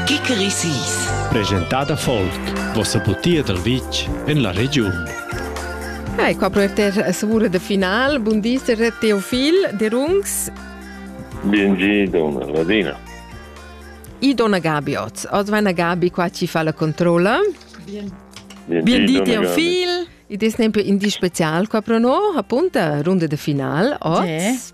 Kickerissis. Presentada folk, vossa butia dal vitg en la regiun. Hai qua per te savura de final. Bun di, Teofil de Rungs. Benji, donna Ladina. I donna Gabi oz. Oz va Gabi qua ci fa la controlla. Bien. Bien di, Teofil. I des tempo in di special qua pro no, appunta, runde de final oz.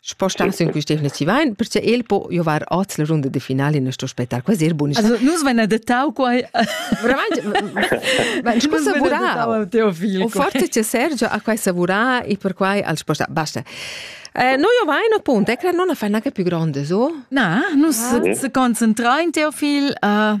Spostar sin quist definitiv ein, perche el po giovar oz la runda de finale in sto spettacol, quasi er bun. Also nus vein adettau quai. Veramente, scusa savura. O forte che Sergio ha quai savura e per quai al spostar. Basta. Eh, noi ovain appunto, e credo non a fare una più grande, so? Na, nus ah. ci concentrain Teofil uh,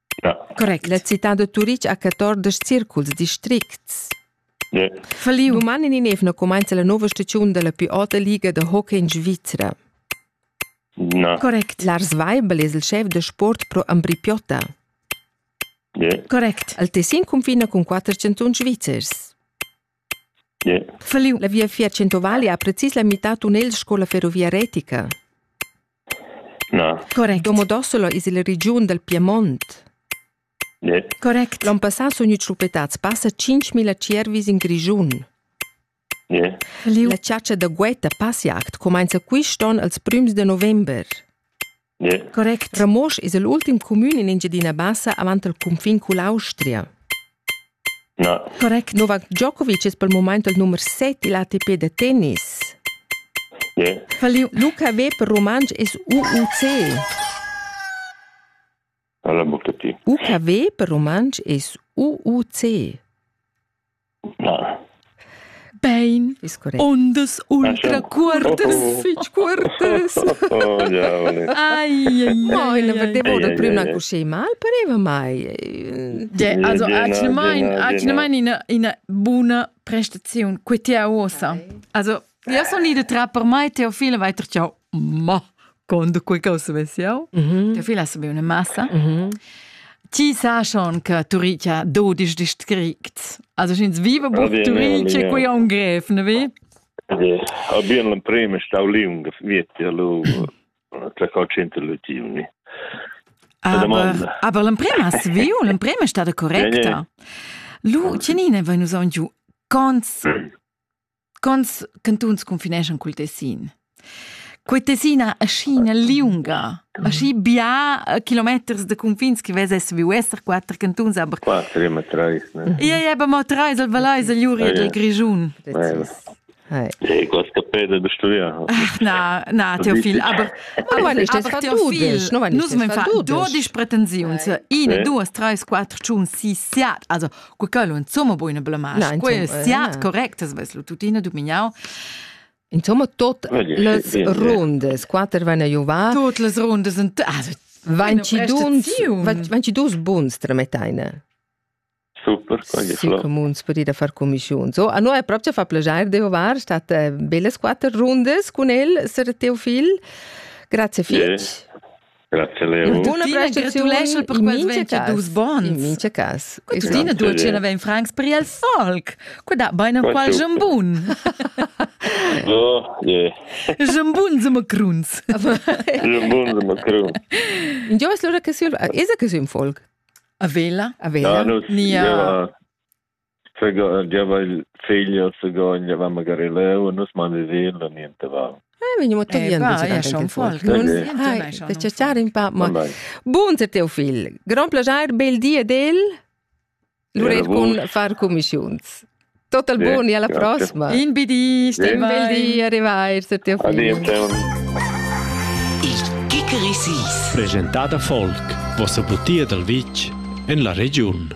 Correct, la citad da Turitg ha 14 circuls districts. Yeah. Faliu uman in evna cumainza la nova stagiun della più alta liga da hockey in Svizra. No. Correct, Lars Weibel es il chef de sport pro Ambripiotta. Yeah. Correct, il Tessin cunfina cun quatter cantuns svizzers. Falliu la viafier centovali ha precis la mitad tunnel sco la ferrovia retica. Na. Correct. Domodossolo es il regiun dal Piemont. Ne. Correct. L'on passà sun gnüts schluppettats passa 5.000 tschiervis in Grischun. Ne. La chatscha da guetta passiact cumainza quist'on als prüms de november. Correct. Ramosch es il ultim cumün in Engiadina Bassa avant il cunfin cull'Austria. No. Correct. Novak Djokovic es pel mumaint il numer 7 illa ATP da tennis. Yeah. Luca Weber Romansch es UUC. UKW per rumantsch es UUC. Na. Bein. Ist korrekt. Ondas ultra cuortas, fitg cuortas. Oh, ja, ai, ai, ai, la vedevo da prima così, ma pareva mai. Ja, also, ha ci mai una buona prestazione qui ti a USA. Also, Ja sono ida tra per mai Teofila weiter ciao. Ma quando quei causa ves jau? Mhm. Teofila sabe una massa. Mhm. Ti sa schon che Turicia 12 ist kriegt. Also schins vive bu Turicia qui ha un gref, ne vi? Ja, aber in prima stau lì un vietti allo tra cocente lutiuni. Aber, aber l'emprema si viu, l'emprema è stata correcta. Lu, Cenine, vai nous giù, cons Quants cantuns confineschan cul Tessin? Quei Tessin ha ascina liunga, aschi bia eh, kilometers de confins che vess viu esser quater cantuns, aber Quattro, immer drei. Ne? Ia ia aber mo treis al Valais el Juri ed el Grischun. E questa peda da studiar. Na, na, Teofil, aber nus men fa 12 pretensiuns, 1, 2, 3, 4, 5, 6, also Cu quello insomma buona blamasch. No, quel siat correct, es ves lu tuttina dumignau. Insomma, tot las rundes, quater van a juvar. Tot las rundes, also, Wenn ci dus, wenn ci dus buns tremeteine. Super, quagli flor. Si comuns per ir a far commissiun. So, a noi è proprio fa piacere di juvar, state eh, belle quattro rundes con el, sir Teofil. Grazie fitch. Yeah. Dunna Brest gratuleschel per quels 22 bons. In mincha cas. Questa dina dulcina vegn francs per il folk. Qua da bain am qual jambun. Oh, yeah. Jambun se macruns. Jambun se macruns. Jo es lura che sül, es que sün folk? A vela? A vela? Ja, no, Nia. Ja, giava il figl a Sagogn, giava magari leu e nus man vesein la niente va. Eh, vegniamo togliendo da ciaciare un po'. Ma buonasera teo figl. Grand piacere, bel di ed el. Lurer cun far commissiuns. Tot al buon e alla prossima. In bidi, Stefan. Un bel di, arrivederci teo figl. Il Kickerisis. Presentata Folk, vossa butia dal vitg en la regiun.